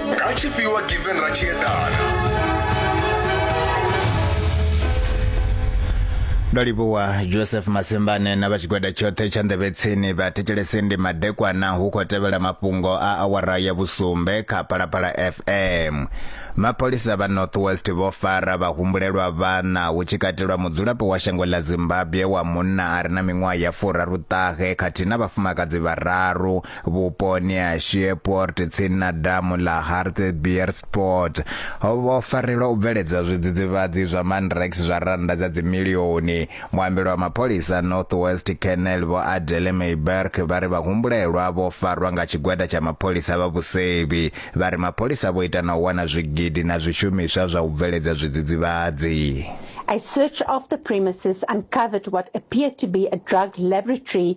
nga tshifhiwa given ra tshi eḓana ndo livhuwa joseph masembane na vha tshigwada tshoṱhe tsha nḓevhe tsini vha thetshelese ndi madekwana hu khou tevhela mafhungo a awara ya vhusumbe kha phalaphala fm mapholisa vha north west vho fara vhahumbulelwa vhana hu tshi katelwa mudzulapo wa shango ḽa zimbabwe wa munna a re na miṅwaha ya furaruṱahe khathihi na vhafumakadzi vhararu vhuponi ha Shreveport tsini na damu ḽa Hartbeespoort ho vho farelwa u bveledza zwidzidzivhadzi zwa Mandrax zwa rannda dza dzimilioni. Muambeli wa mapholisa Northwest Colonel Vho Adele Meiberg vha ri vhahumbulelwa vho farwa nga tshigwada tsha mapholisa vha vhusevhi. Vha ri mapholisa vho ita na u wana zwigidi na zwishumiswa zwa u bveledza zwidzidzivhadzi. A search of the premises uncovered what appeared to be a drug laboratory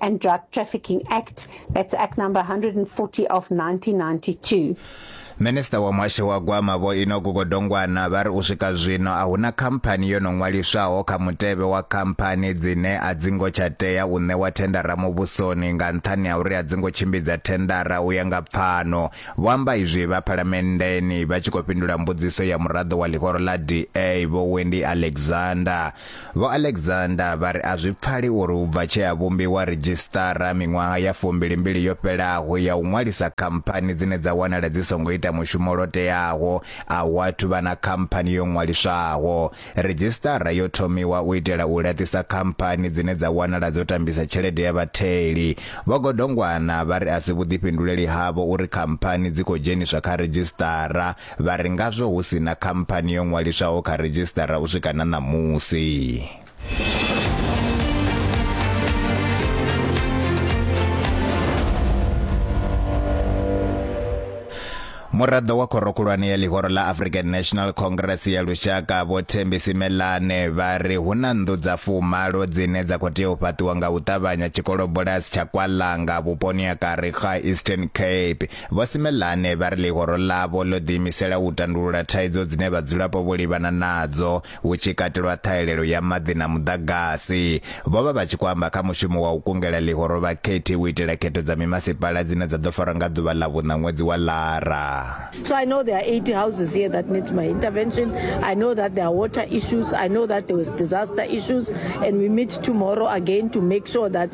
and Drug Trafficking Act, that's Act number 140 of 1992. Minister wa muhasho wa gwama vho Inoku Godongwana vha ri u swika zwino a huna khamphani yo no ṅwaliswaho kha mutevhe wa khamphani dzine a dzi ngo tsha tea u ṋewa thendara muvhusoni nga nṱhani ha uri a dzi ngo tshimbidza thendara u ya nga pfano vho amba izwi vha phalamenndeni vha tshi khou fhindula mbudziso ya muraḓo wa ḽihoro ḽa DA vho Wendy Alexander Vho Alexander vha ri a zwi pfali uri u bva tshea vhumbiwa ridzhisiṱara miṅwaha ya fumbili mbili yo fhelaho ya u ṅwalisa khamphani dzine dza wanala dzi songo ita mushumo lwo teaho, a hu athu vha na khamphani yo ṅwaliswaho. Ridzhisiṱara yo thomiwa u itela u laṱisa khamphani dzine dza wanala dzo tambisa tshelede ya vhatheli. Vho Godongwana vha ri a si vhuḓifhinduleli havho uri khamphani dzi khou dzheniswa kha ridzhisiṱara Vha ri ngazwo hu si na khamphani yo ṅwaliswaho kha redzhisiṱara u swika na ṋamusi. muraḓo wa khorokhulwane ya ḽihoro ḽa african national congress ya lushaka vho thembisi melane vha ri hu na nnḓu dza fumalo dzine dza khou tea u fhaṱiwa nga u ṱavhanya tshikolobulasi tsha kwalanga vhuponi ha karikha eastern cape Vho Simelane vha ri ḽihoro ḽavho ḽo ḓiimisela u tandulula thaidzo dzine vhadzulapo vho livhana nadzo, hu tshi katelwa ṱhahelelo ya maḓi na muḓagasi. Vho vha vha tshi khou amba kha mushumo wa u kungela ḽihoro vhakhethi u itela khetho dza mimasipala dzine dza ḓo farwa nga ḓuvha ḽa vhuṋa ṅwedzi wa Lara. So I know there are 80 houses here that need my intervention. I know that there are water issues. I know that there was disaster issues and we meet tomorrow again to make sure that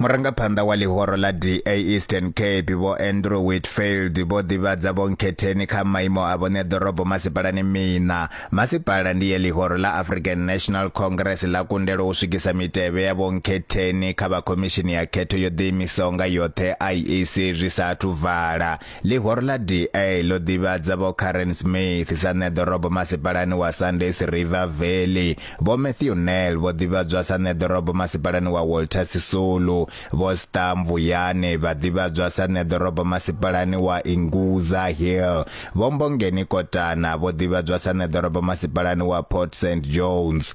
murangaphanḓa wa ḽihoro ḽa da eastern cape vho andrew whitfield vho ḓivhadza vhonkhetheni kha maimo a vhone ḓorobo masipalani miṋa masipala ndi ye ḽihoro ḽa african national congress ḽa kundelwa u swikisa mitevhe ya vhonkhetheni kha vha khomishini ya khetho yo ḓiimisaho nga yoṱhe iec zwi sa athu vala Ḽihoro ḽa DA ḽo ḓivhadza Vho Karen Smith sa ṋea ḓorobo masipalani wa Sunday's River Valley, Vho Matthew Nel vho ḓivhadzwa sa ṋea ḓorobo masipalani wa Walter Sisulu, Vho Star Mvuyane vha ḓivhadzwa sa ṋea ḓorobo masipalani wa Ingudza Hill, Vho Mbongeni Kotana vho ḓivhadzwa sa ṋea ḓorobo masipalani wa Port St John's,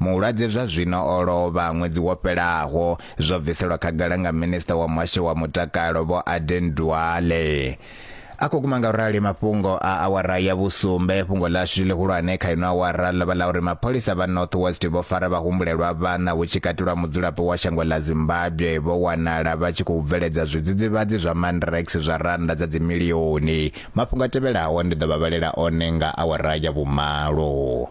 Mulwadze zwa zwino o lovha ṅwedzi wo fhelaho, zwo bviselwa khagala nga minisiṱa wa muhasho wa mutakalo Vho Aden Duale. A khou guma nga u rali mafhungo a awara ya vhusumbe. Fhungo ḽashu ḽihulwane kha ino awara ḽo vha ḽa uri mapholisa vha North West vho fara vhahumbulelwa vhaṋa hu tshi katelwa mudzulapo wa shango ḽa Zimbabwe vho wanala vha tshi khou bveledza zwidzidzivhadzi zwa Mandrax zwa rannda dza dzimilioni. Mafhungo a tevhelaho ndi ḓo vha vhalela one nga awara ya vhumalo.